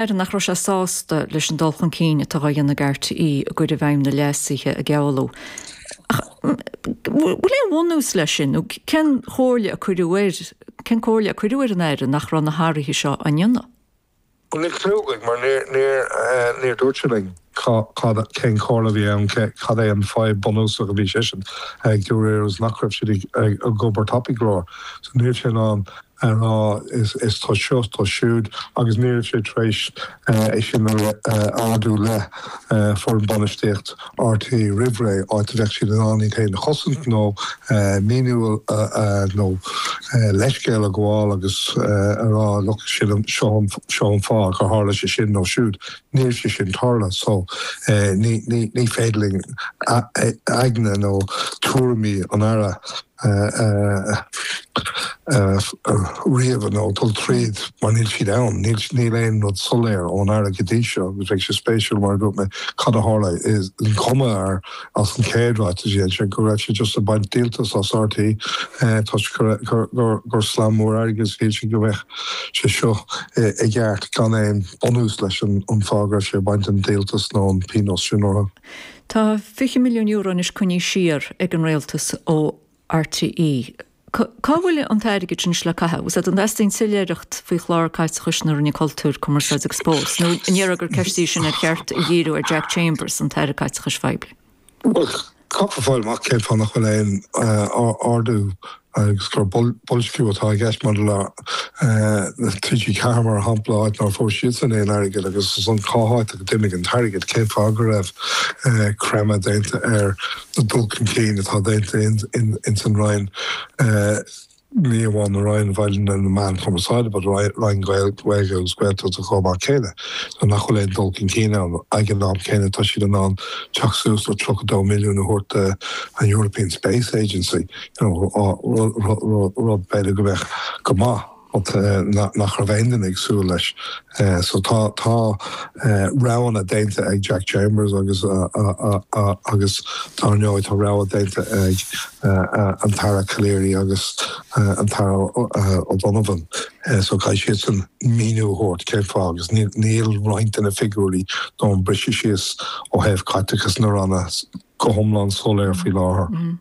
Aire nach raibh sé sásta leis an dul chun cinn atá á dhéanamh ag RTÉ i gcur i bhfeidhm na leasuithe a gealladh. Ach an bhfuil aon bhunús leis sin nó cén chomhairle a cuireadh air, cén comhairle a cuireadh ar an Aire nach raibh na hathruithe seo á ndéanamh? Níl cliú againn mar níor, níor dúirt sé linn cad, cén chomhairle a bhí ann, cad é an fadhb bunúsach a bhí seisean ag rá seachas nach raibh siad ag obair tapaidh go leor. So níl sé in ann. a rá is toisc seo is toisc siúd agus ní raibh sé tar éis é sin a ardú le foireann bainistíocht RTÉ roimh ré, áit a bheadh siad in ann iad féin a chosaint nó míniú nó leithscéal a ghabháil agus a rá look sin an, seo an, seo an fáth gur tharla sé sin nó siúd. Níl sé sin tar éis tarlú so ní féidir linn aigne nó tuairimí an Aire a. ríomh nó dul tríd mar níl siad ann. Níl aon rud soiléir ón Aire go dtí seo agus bheadh sé spéisiúil mar a dúirt mé cad a tharla an cur amach as an chéad ráiteas a dhein sé go raibh sé just ag baint díoltas as RTÉ toisc gur slam mór airgid agus shíl siad go mbeadh sé seo i gceart gan aon bunús leis an fáth go raibh sé ag baint an díoltas nó an pionós sin orthu. Tá €20 milliún anois coinnithe siar ag an Rialtas ó RTÉ. Cá bhfuil an t-airgead sin anois le caitheamh? Agus an dteastaíonn soiléireacht faoi chlár caiteachais na Roinne Cultúir, Cumarsáide agus Spóirt, nó an ndéarfá gur ceist í sin ar cheart a dhíriú ar Jack Chambers, an tAire Caiteachais Phoiblí? Bhuel, caithfear fáil amach cén fáth nach bhfuil aon ardú agus gur boilsciú atá i gceist maidir le TG4 mar shampla, áit nach bhfuair siadsan aon airgead, agus ansan cá háit a d'imigh an t-airgead, cén fáth go raibh creimeadh déanta ar na dul chun cinn atá déanta ins an Roinn, ní amháin an Roinn na Meán Cumarsáide but Roinn Ghaeilge agus Gaeltachta chomh maith céanna, nuair nach bhfuil aon dul chun cinn ann. Ag an am céanna tá siad in ann teacht suas le €32 milliún a thabhairt do an European Space Agency, rud b'fhéidir go mbeadh go maith but nach raibh aon duine ag súil leis so tá roghanna déanta ag Jack Chambers agus agus dár ndóigh tá rogha déanta ag an tAire Calleary agus an tAire O'Donovan so caithfidh siadsan míniú a thabhairt cén fáth. agus níl roinnt de na figiúirí nó an briseadh síos ó thaobh caiteachas na ranna go hiomlán soiléir faoi láthair.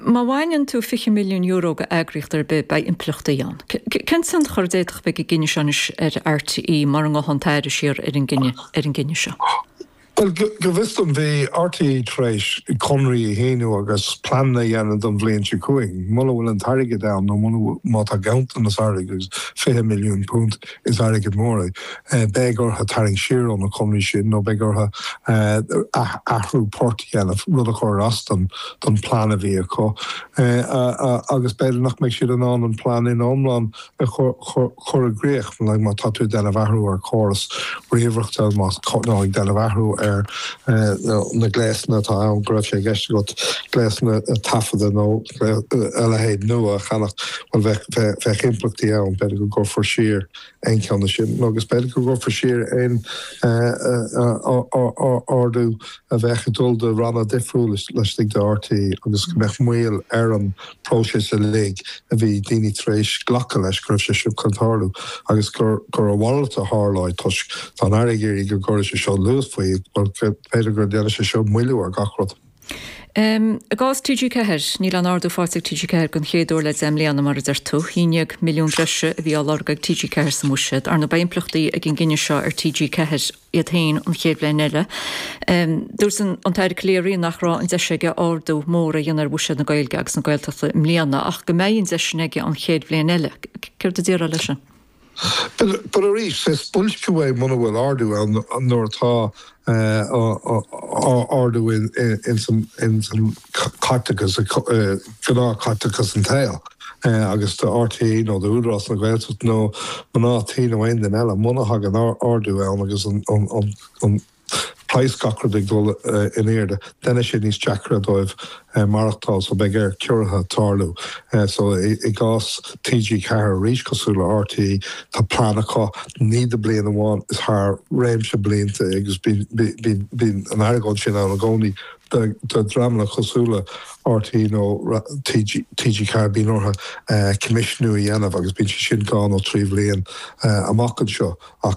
Má bhaineann tú €20 milliún d'eagraíocht ar bith beidh impleachtaí ann. Cén tionchar a d'fhéadfadh a bheith ag an gcinneadh seo anois ar RTÉ mura ngabhann an tAire siar ar an gcinneadh, ar an gcinneadh seo? Bhuel, go bhfios dom bhí RTÉ tar éis conraí a shíniú agus pleananna a dhéanamh don bhliain seo chugainn. Muna bhfuil an t-airgead ann nó muna, má tá ganntanas airgid, agus £20 milliún, is airgead mór é. Beidh orthu tarraingt siar ó na conarthaí sin nó beidh orthu athrú páirte a dhéanamh, rud a chuirfidh as don phlean a bhí acu agus b'fhéidir nach mbeidh siad in ann an plean ina iomlán a chur i gcrích. Má tá tú ag déanamh athrú ar chóras ríomhaireachta nó ag déanamh athrú ar na gléasanna atá ann, go raibh sé i gceist agat gléasanna taifeadta nó, a leithéid nua a cheannach, bhuel, bheadh impleachtaí ann, b'fhéidir go gcuirfear siar aon cheann de sin, agus b'fhéidir go gcuirfear siar aon ardú a bheadh ag dul do ranna difriúla laistigh de RTÉ, agus go mbeadh moill ar an bpróiseas uilig a bhí daoine tar éis glacadh leis go raibh sé seo chun tarlú, agus gur a mhalairt a tharlóidh, toisc, tá an tAire ag iarraidh go gcuirfidh sé seo luas faoi, bhuel, b'fhéidir go ndéanfaidh sé seo moilliú ar gach rud. I gcás TG4, níl aon ardú faighte ag TG4 den chéad uair le deich mbliana, mar a deir tú. €11 milliún breise a bhí á lorg ag TG4 sa mbuiséad. Ar ndóigh beidh impleachtaí ag an gcinneadh seo ar TG4 iad féin an chéad bhliain eile. Dúirt an tAire Calleary nach raibh an deis aige ardú mór a dhéanamh ar bhuiséad na Gaeilge agus na Gaeltachta i mbliana ach go mbeidh an deis sin aige an chéad bhliain eile. Céard a déarfá leis sin? Bhuel arís, is boilsciú é muna bhfuil ardú ann, nuair atá ardú ins an caiteachas, gnáth caiteachas an tsaoil, agus do RTÉ nó do Údarás na Gaeltachta nó mná tí nó aon duine eile, muna thagann ardú ann agus an praghas gach rud ag dul in airde, deineann sé níos deacra dóibh maireachtáil so beidh ar chiorruithe tarlú. So i gcás TG4 arís, cosúil le RTÉ, tá plean acu, ní do bliain amháin, is thar réimse blianta é agus bíonn an argóint sin ann i gcónaí do dhreamanna cosúil le RTÉ nó TG4, bíonn orthu coimisniú a dhéanamh agus bíonn sé sin dhá nó trí bhliain amach anseo ach